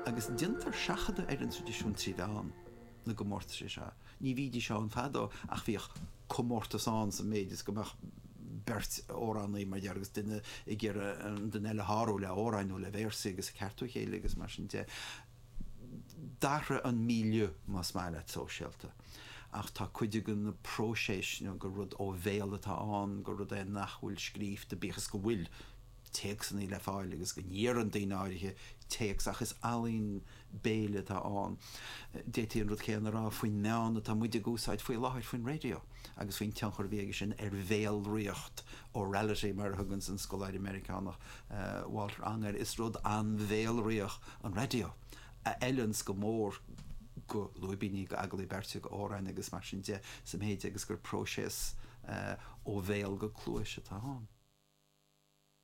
agus déantar seachadadh ar an traidisiún trí mheán na gcomórtas anseo. Ní bhídís ann fadó ach bhíodh comórtas ann sa mhéid is go mbeadh beirt amhránaí, mar déarfá, agus duine ag iarraidh an duine eile a shárú le hamhráin nó le véarsaí agus ag ceartú a chéile agus mar sin de. D'athraigh an milieu, más maith leat, sóisialta ach tá cuid de na próiseasanna gur rud ó bhéal atá ann, gur rud é nach bhfuil scríofta, bíodh is go bhfuil, téacsanna le fáil agus go n-iarrann daoine áirithe téacs ach is ealaín béil atá ann. D'fhéadfaí an rud céanna a rá faoin meán atá muid ag úsáid faoi láthair, faoin raidió, agus faoin tionchar a bhí aige sin ar bhéalraíocht, orality mar a thugann an scoláire Meiriceánach Walter Ong air. Is rud an-bhéalraíoch an raidió, a fheileanns go mór go lúibíní, go agallaí beirte, go amhráin agus mar sin de, sa mhéid agus gur próiseas ó bhéal go cluais atá ann.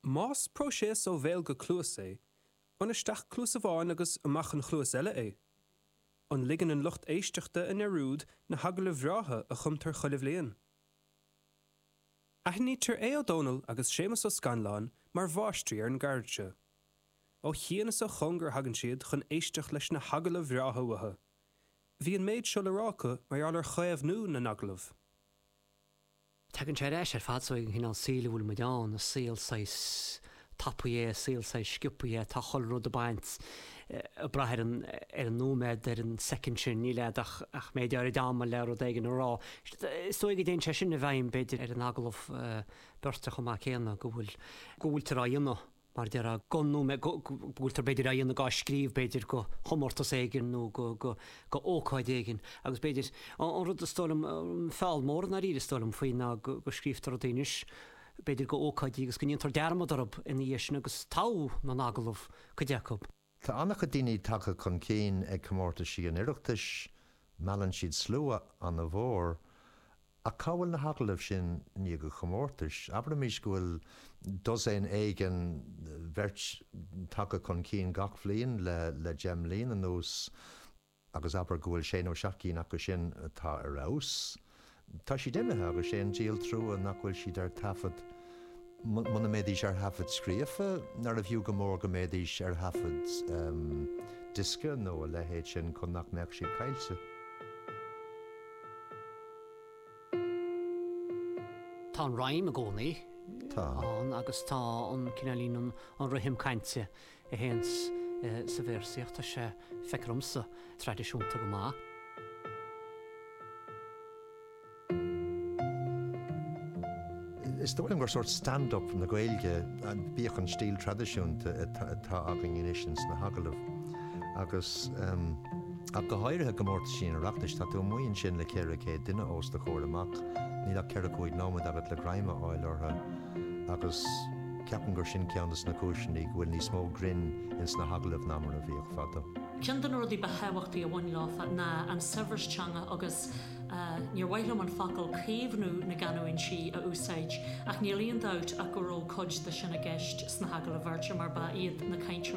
Más próiseas ó bhéal go cluas é, an isteach cluas amháin agus amach an chluas eile é? An ligeann an lucht éisteachta i ndearúd na hagallaimh bhreátha a chumtar chuile bhliain? Aithnítear Aodh Ó Dónaill agus Séamus Ó Scanláin mar mháistrí ar an gceird seo. Ó chian is ó chóngar a thagann siad chun éisteacht leis na hagallaimh bhreátha uathu. Bhí an méid seo le rá acu mar gheall ar chaomhnú na n-agallamh. Tagann sé ar ais ar fad ansin ag an chineál saoil a bhfuil muid ann, saol saghas tapaidh é, saol saghas sciobtha é, tá chuile rud ag baint, ag braith ar an, ar an nóiméad, ar an soicind sin, níl agat ach, ach méid áirid ama le rud éigin a rá. Is dóigh go dtéann sé sin i bhfeidhm b'fhéidir ar an agallamh beirte chomh maith céanna, go bhfuil, go bhfuiltear á dhéanamh. mar a deir Aodh, go mb' go bhfuiltear b'fhéidir á dhéanamh gá scríobh b'fhéidir go chomórtas éigin nó go go go ócáid éigin agus b'fhéidir an rud is dóigh liom feall mór i ndáiríre is dóigh liom faoi ná go go scríobhtar rudaí anois b'fhéidir go ócáidí agus go ndéantar dearmad orthu ina dhiaidh sin agus togha na n-agallamh cuid acu. Tá an-chuid daoine tagtha chun cinn ag comórtaisí an Oireachtais, meallann siad slua an-mhór, ach cá bhfuil na hagallaimh sin i ndiaidh an chomórtais? Abraimis go bhfuil dosaen éigin beirt, tagtha chun cinn gach bliain le deich mbliana anuas, agus abair go bhfuil sé nó seacht gcinn acu sin atá ar fheabhas, tá siad imithe agus sé an díol trua nach bhfuil siad ar thaifead. Muna mbeidís ar thaifead scríofa, nárbh fhiú go mór go mbeidís ar thaifead diosca nó a leithéid sin chun nach mbeadh siad caillte. Tá an rím i gcónaí ann agus tá an cineál líon an rithim cainte Sa véarsaíocht tá sé feictear dhomsa traidisiúnta go maith. Is dóigh liom gur sórt stand-up na Gaeilge, bíodh an stíl traidisiúnta atá againn anois ins na hagallaimh agus ach go háirithe i gcomórtaisí an Oireachtais, tá tú amuigh ansin le 400 duine ós do chomhair amach, níl ach ceithre cúig nóiméad agat le greim a fháil orthu. agus ceapaim gur sin ceann de na cúiseanna go bhfuil níos mó grinn ins na hagallaimh ná mar a bhíodh fadó. Ceann de na rudaí ba thábhachtaí a bhain leo ná an saibhreas teanga agus níor mhaith liom an focal 'caomhnú na gcanúintí' a úsáid ach níl aon dabht ach go raibh cuid de sin i gceist sna hagallaimh bheirte mar ba iad na cainteoirí